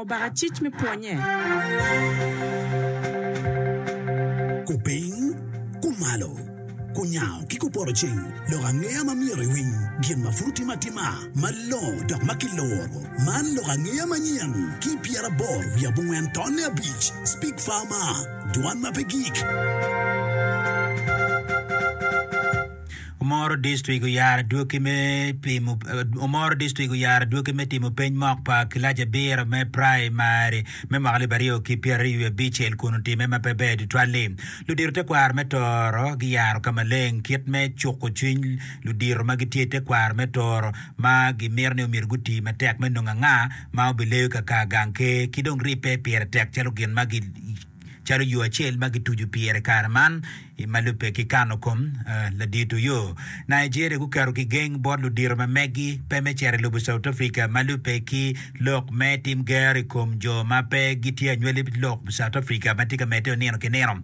Obaka cic me pwonye. Kupiny, kumalo, kunyango ki kupoto ceng lok angeya ma myero iwiny gin ma pud otime atima malongo dok ma kiluro. Man lok angeya manyen ki pyeraboro wiye abongwen tonne abic, Speak Farmer, Dwan ma pe gik. Omoro District oyaro adwogi me pimo Omoro District oyaro adwogi me timo peny mok pa kilac abiro me praimari me mwaka alip aryo ki pyeraryo wiye abicel kun otime ma pe ber tutwal-li. Ludito tekwaro me Toro giyaro ka maleng kit me cuko cwiny ludito ma gitye i tekwaro me Toro ma gimito ni omyero guti matek me nongo anga ma obileyo ka kaa gang ker ki dong ribbe pire tek calo gin ma calo yo acel ma kituco pire i kare man. I ma lubbe ki kano kom, ladito yo Nigeria guketo kigeng bot ludito ma megi pe me cito i lobo South Africa ma lubbe ki lok me tim gero i kom jo ma pe gitye anywali i lok South Africa ma tye ka medde onino ki nino.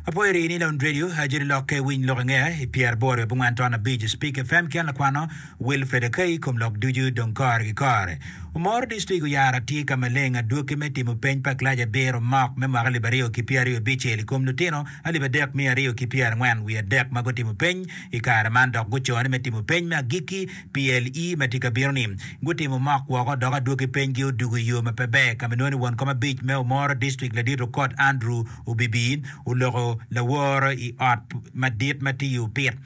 Apoyo rii ni Lounge Radio ajoli lokke winy lok inge i pyeraboro i abongwan ton abic Spik FM ki en lakwano Wilfred Okei i kom lok ducu dong kore ki kore. Omoro District oyara tye ka maleng adwoki me timo peny pa kilac abiro mock me mwaka alip aryo ki pyeraryo abicel i kom lutino alip adek miya aryo ki pyerangwen wiye adek ma gutimo peny i kare man dok guco ni me timo peny me agikki PLE ma tye ka bino ni. Gutimo mock woko dok adwoki peny gi odugo i yo ma pe ber ka ma inongo ni won kom abic me Omoro District Ladit Okot Andrew Obibi oloko laworo i ot madit ma tye i opit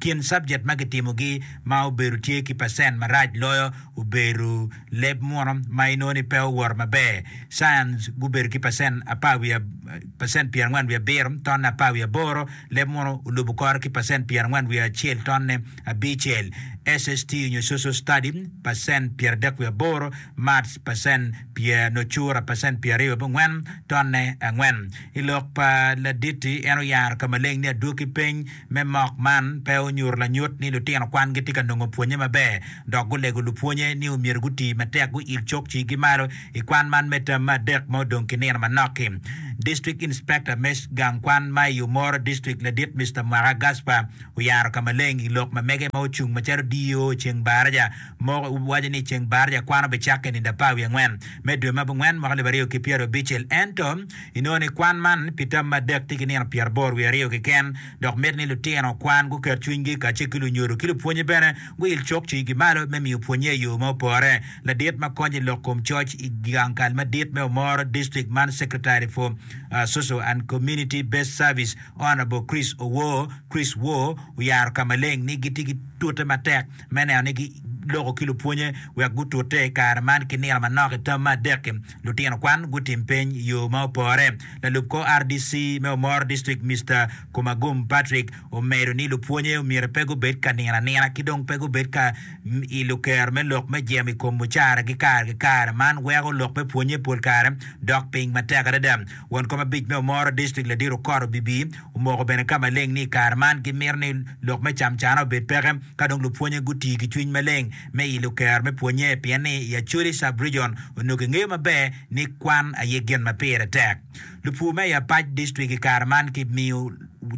kin subject ma kitimogi ma obedo tye ki percent marac loyo obedo leb muno ma inongo ni pe owoto maber. Science gubedo ki percent apar wiye percent pyer angwen wiye abiro tonne apar wiye aboro, leb muno olubo kore ki percent pyer angwen wiye acel tonne abicel, SST nyo Social Study percent pyer adek wiye aboro, Maths percent pyer nyo cura percent pyer aryo wiye abongwen tonne angwen. I lok pa Laditi en oyaro ka maleng ni adwoki peny Me mok man pe onyuto lanyut ni lutino kwan gitye ka nongo pwonye maber, dok gulego lupwonye ni omyero guti matek guil cokcigi malo i kwan man me tam me adek ma odong ki nino manok-ki. District Inspector me gang kwan ma i Omoro District ladit Mister Mwaka Gaspar oyaro ka maleng i lok ma mege ma ocung macalo DO Ceng Baraja mo waco ni Ceng Baraja kwan obicakke i nino apar wiye angwen me dwe ma abongwen mwaka alip aryo ki pyerabicel ento Inongo ni kwan man pi tam me adek tye ki nino pyeraboro wiye aryo keken, dok miti ni lutino kwan guket cwinygi kacel ki lunyodo ki lupwonye bene guil cok cwiyigi malo me miyo pwonnye i yo ma opore. Ladit ma konyo i lok kom coc i gang kal madit me Omoro District man Secretary for Social and Community Based Service Honourable Chris Owor, Chris Wo, oyaro ka maleng ni gitye ki tute matek me neno ni giloko ki lupwonye wek gutute i kare man ki nino manok i tam me adek-ki. Lutino kwan gutim peny i yo ma opore. Lalub kor RDC me Omoro District Mister Kumagum Patrick omedo ni lupwonye omyero pe gubed ka nino anina ki dong pe gubed ka ilo kero me lok me jemo i kom mucaragi kare ki kare. Man weko lok me pwonye pol kare dok piny matek adada. Won kom abic me Omoro District Ladit Okot Obibi omoko bene ka maleng ni i kare man gimito ni lok me camcane obed peke. Ka dong lupwonye guti ki cwiny maleng me ilo kero me pwonye pien ni i Acholi Sub-Region onongo kingeyo maber ni kwan aye gin ma pire tek, lupur me i apac dictrik i kare man kimiyo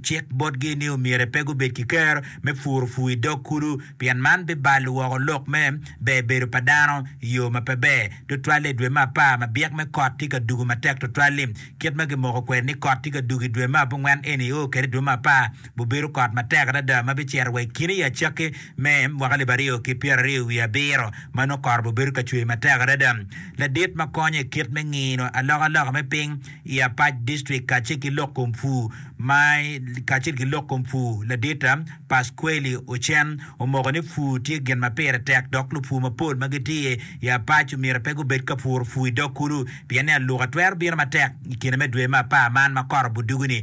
cik botgi ni omyero pe gubed ki kero me puro pur i dog kulu pien man bibalo woko lok me ber bedo pa dano i yo ma pe ber, tutwale i dwe me apar ma byek me kot tye ka dugo matek tutwal-li. Kit ma gimoko kwede ni kot tye ka dugo i dwe me abongwen eni oo kwede i dwe me apar. Gubedo kot matek adada ma bicito wa i kine i acakki me mwaka alip aryo ki pyeraryo wiye abiro ma nongo kore bibedo ka cwer matek adada. Ladit ma konyo i kit me ngino alokaloka me piny i Apac District kacel ki lok kom pur ma kacel ki lok kom pur ladit Pasquely Ocen omoko ni pur tye gin ma pire tek dok lupur mapol ma gitye i Apac omyero pe gubed ka puro pur i dog kulu pien ni aluka twero bino matek i kine me dwe me apar man ma kore budugu ni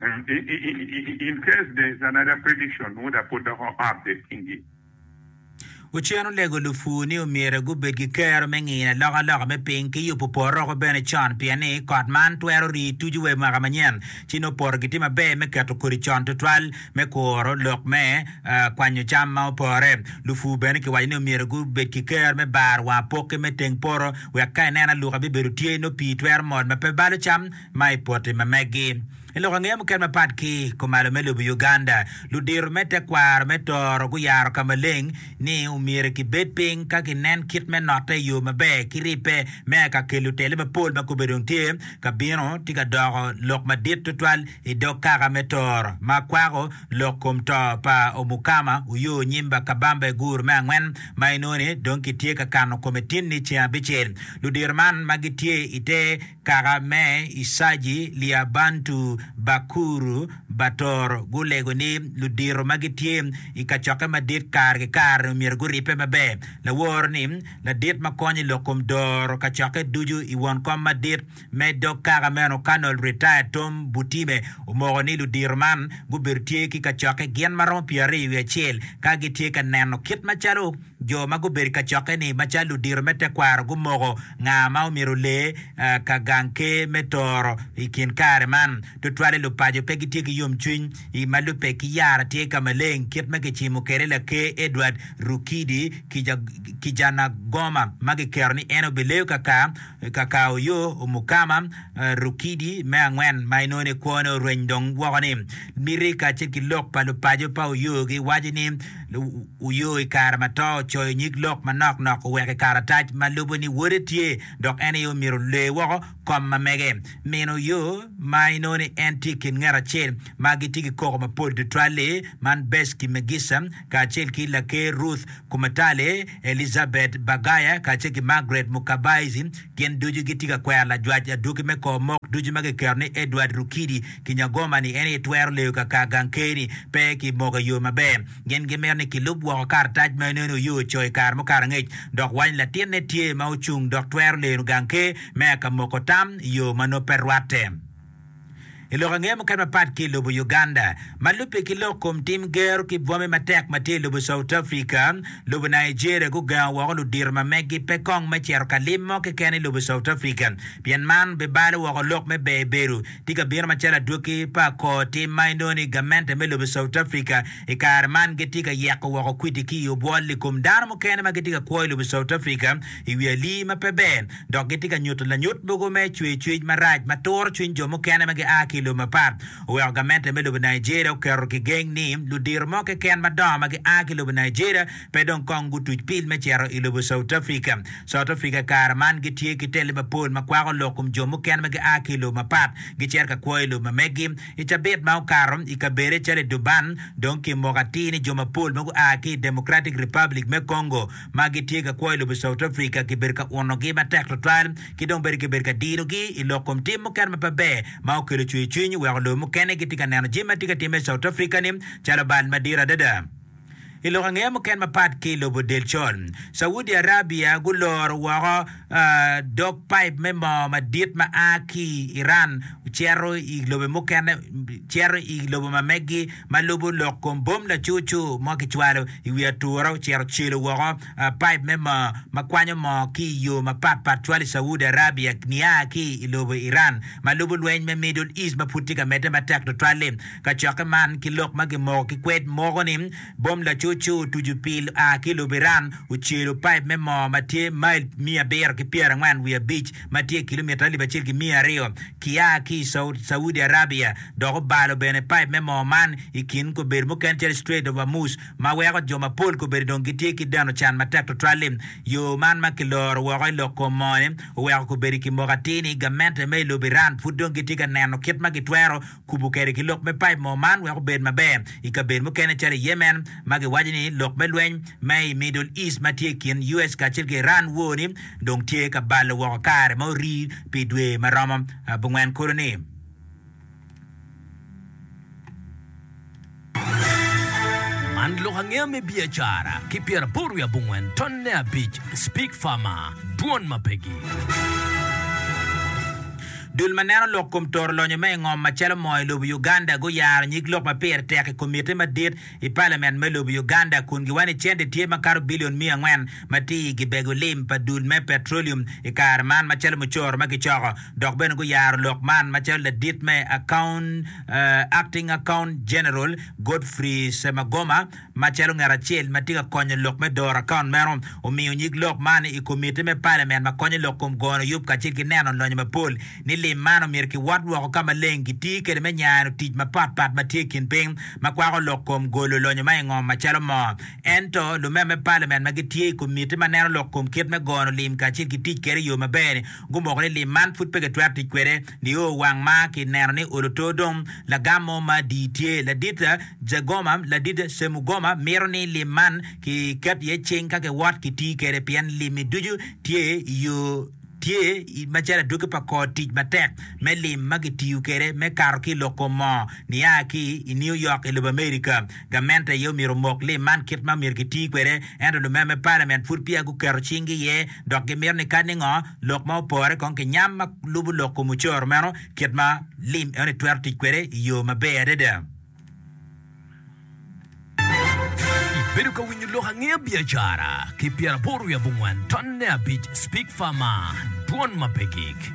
In case there is another prediction would I put the whole update kingi. Ocen olego lupur ni omyero gubed ki kero me ngino alokaloka me piny ki yubo poroko bene con pien ni kot man twero rii tucu wa i mwaka manyen ci nongo poto gitye maber me keto kodi con tutwal me kuro lok me kwanyo cam ma opore. Lupur bene kiwaco ni omyero gubed ki kero me baro wang apokke me teng poto wek ka ineno aluka bibedo tye nongo pii twero mol ma pe balo cam ma i poti ma megi. I lok angeya mukene mapat ki kumalo me lobo Uganda, ludito me tekwaro me toro guyaro ka maleng ni omyero kibed piny ka ginen kit me note i yo maber ki ribbe me aka kelo otelle mapol ma kobbe dong tye ka bino tye ka doko lok madit tutwal i dog kaka me toro ma kwako lok kom to pa Omukama Oyo Onyimba Kabamba i guru me angwen ma inongo ni dong kitye ka kano kome tin ni ceng abicel. Ludito man ma gitye ite kaka me Isaji, Liabantu, Bakuru, Bator, gulego ni ludito ma gitye i kacokke madit kare ki kare-ni omyero guribbe maber. Lawor ni ladit ma konyo i lok kom doro kacokke ducu i won kom madit me dog kaka meno, Colonel Retired Tom Butime, omoko ni ludito man gubedo tye ki kacokke gin ma romo pyeraryo wiye acel ka gitye ka neno kit macalo Jo ma gubedo i kacokke-ni macalo ludito me tekwaro gumoko nga ma omyero ole ka gang ker me toro i kin kare man. Tutwalle lupaco pe gitye ki yomcwiny. I ma lubbe ki yara tye ka maleng kit ma kicimo kwede Laker Edward Rukidi Kijanagoma ma giketo ni en obileyo ka ka Kakauyo, Umukama, Rukidi me angwen, ma inongo ni kwone orweny dong woko ni, miti kacel ki lok pa lupaco pa Uyo giwaco ni Uyo i kare ma to ocoyo nyig lok manok nok oweko i karatac ma lubo ni wode tye dok en aye omyero olee woko kom ma mege. Min Uyo, ma inongo ni en tye i kin nget acel ma gitye ki koko mapol tutwal-li, man Beshki Megissa kacel ki Laker Ruth, Kumatale, Elizabeth Bagaya kacel ki Margaret Mukabaezi gin ducu gitye ka kwero lajwac adwogi me kor mok ducu ma kiketo ni Edward Rukidi Kinyagoma ni en aye twero leyo ka kar gang ker ni pe ki moko i yo maber. Gin gimito ni kilub woko karatac ma ineno oye oco i kare mukato angec dok waco ni latinne tye ma ocung dok twero leno gang ker me aka moko tam i yo ma nongo pe rwatte. I lok ange mukene mapat ki i lobo Uganda, ma lubbe ki lok kom tim gero ki bwome matek ma tye i lobo South Africa, lobo Nigeria gugengo woko ludito ma meggi pe kong me cito ka lim mo keken i lobo South Africa pien man bibalo woko lok me ber bedo. Tye ka bino macalo adwogi pa kor tim ma inongo ni gamente me lobo South Africa i kare man gitye ka yeko woko kwidi ki i obwol i kom dano mukene ma gitye ka kwo i lobo South Africa i wi alii ma pe ber dok gitye ka nyuto lanyut mogo me cwercwec marac ma turo cwiny jo mukene ma gia ki i lobo mapat. Oweko gamente me lobo Nigeria oketo kigeng ni ludito mo keken madongo ma gia ki i lobo Nigeria pe dong kong gutuc pil me cito i lobo South Africa. South Africa i kare man gitye ki tele mapol ma kwako lok kom jo mukene ma gia ki i lobo mapat gicito ka kwo i lobo ma megi. I cabit ma okato, i kabedo calo i Durban, dong kimoko atir ni jo mapol ma gua ki i Democratic Republic me Congo, ma gitye ka kwo i lobo South Africa kibedo ka unogi matek tutwal ki dong bene kibedo ka dinogi i lok kom tim mukene ma pe ber ma okelo cwercwiny oweko lobo mukene gitye ka neno jami ma tye ka timme i South Africa-ni calo bal madit adada. I lok angeya mukene mapat ki i lobo Delcol, Saudi Arabia guloro woko dog paip me moo madit ma a ki i Iran cito i lobe mukene cito i lobo ma megi ma lubo lok kom bom lacucu ma kicwalo i wi ature ocito celo woko paip me moo ma kwanyo moo ki i yo mapat pat cwalo i Saudi Arabia nia ki i lobo Iran ma lubo lweny me Middle East ma pud tye ka medde matek tutwal-li. Kacokke man ki lok ma kimoko ki kwed moko ni Bom lacuc-cu otucu pil oa ki i lobo Iran ocelo paip me moo ma tye mail miya abiro ki pyera angwen wiye abic ma tye kilomita alip acel ki miya aryo ki a ki i Saudi Arabia dok obalo bene paip me moo man i kin kobedo mukene calo Strait of Hormuz ma weko jo mapol kobedo dong gitye ki deno can matek tutwal-li. Yo man ma kiloro woko i lok kom moo-ni oweko kobedo i kimoko atir ni gamente me i lobo Iran pud dong gitye ka neno kit ma gitwero Kubo kede ki lok me paip moo man wek obed maber i kabedo mukene calo i Yemen ma giwaco ni lok me lweny ma i Middle East ma tye i kin US kacel ki Iran woo ni dong tye ka balo woko kare ma orii pi dwe ma romo abongwen kulu ni. Man lok angeya me biacara ki pyeraboro wiye abongwen tonne abic Speak Farmer, Dwon ma pegi. Dul ma neno lok kom toro lonyo me ingom macalo moo i lobo Uganda guyaro nyig lok ma pire tek i komitte madit i palament me lobo Uganda kun giwaco ni cente tye makato billion miya angwen ma tye i gibego lim pa dul me petroleum i kare man macalo mucoro ma gicoko dok bene guyaro lok man macalo ladit me Akaunt, Acting Accountant General, Godfrey Semagoma, macalo ngat acel ma tye ka konyo lok me doro akaunt meno, omiyo nyig lok man i Komitti me Palamen ma konyo lok kom gono yub kacel ki neno lonyo mapol ni lim man omyero kiwot woko ka maleng kitiyo kwede me nyano tic mapat pat ma tye i kin piny ma kwako lok kom golo lonyo ma i ngom macalo moo. Ento, lumeo me Palamen ma gitye i Komitti ma Neno lok kom kit me gono lim kacel ki tic kwede i yo maber-ni, gumoko ni lim man pud pe kitwero tic kwede nio wang ma kineno ni olo to dong lagam mo ma di tye. Ladit Jagoma, Ladit Semugoma mito ni lim man ki ket iye cing ka kiwot ki ti kwede pien limmi ducu tye i yo tye macalo adwogi pa kor tic matek me lim ma ki tiyo kwede me kato ki lok kom moo niya ki i New York i lobo America. Gament aye omyero omok lim man kit ma omyero giti kwede, ento lumer me palament pud peya guketo cinggi iye dok gimito ni kadi ngo lok ma opore kong ki nyam ma lubo lok kom ocoro meno kit ma lim eno-ni twero tic kwede i yo maber adada. Ibedo ka winyo lok angeya biacara ki pyera aboro wiye abongwen tonne abic Speak Farmer, Dwon ma pe gik.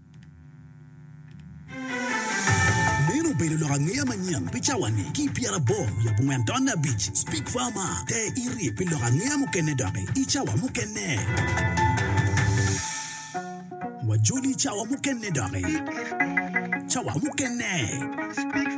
Meno obedo lok angeya manyen pi cawani ki i pyerabor wiye abongwen taun abic. Speak Farmer, Te iri pi lok angeya mukene doki i cawa mukene. Wajoli i cawa mukene doki. Cawa mukene.